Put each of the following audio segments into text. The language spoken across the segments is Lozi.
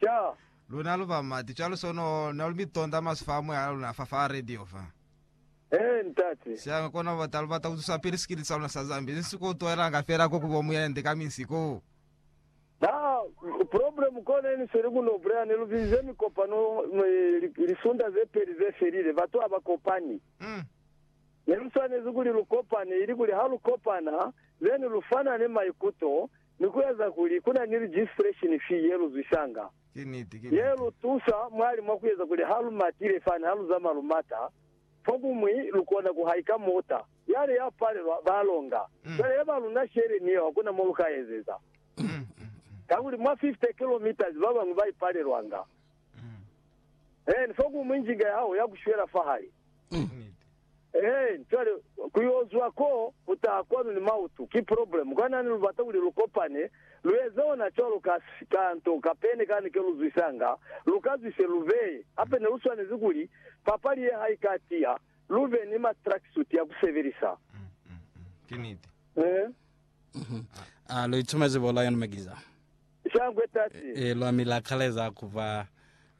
ca. Luna lu ba mati cwalo so no na lu mitonda masu fa moya la luna fa fa radio fa. Ee, Ntate. Sianga kona bata lu bata ku tusa pili sikili sa luna sa Zambia, ni si ko tuelanga fela ko ku bo muyende ka minsi ko. Na, problem kona ni sweli ku no bulela, ne lu bizize mikopano lisunda ze peli ze felile, batu ha ba kopani. Mm. Ne lu swanezi kuli lu kopane, ili kuli ha lu kopana, then lu fanane maikuto, ni ku eza kuli ku na ni registration fee ye lu zwisanga, ye lu tusa mwali mwa ku eza kuli ha lu matile fani ha lu zamaya lu mata, fokumwi lu kona ku haika mota. Yale ya palelwa, ba longa. Cwale ye ba luna shele ni yeo ha ku na mo lu ka ezeza. Kakuli mwa 50 kilometres ba bañwi ba ipalelwanga. Eeni, fokumwi njinga ya hao ya ku shwela fahali. Ehe, cwale ku yo zwa ko, ku taha kwanu ni mautu, ki problem. Kwa nani lu bata kuli lu kopane, lu eze ona cwalo ka, ka nto kapene kani ke lu zwisanga, lu ka zwise lu beye. Hape ne lu swanezi kuli, papali ye ha i ka tiya, lu be ni ma tracksuit ya ku sebelisa. Ki niti. Ehe. A lu itumezi bo Lion Magiza? Shangwe tati. E, lwa mi la kaleza ku ba,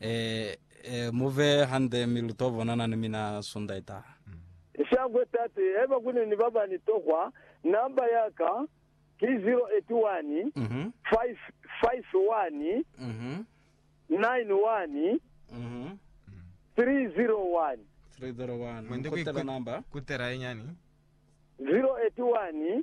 e, e, mu be hande, mi lu to bonana ni mina Sunda itaha. Shangwe tati. Haiba kuni ni baba ni tokwa, namba ya ka ki 081 551 91 301. 301. Mwende ku kutela namba. Kutela inyani. 081.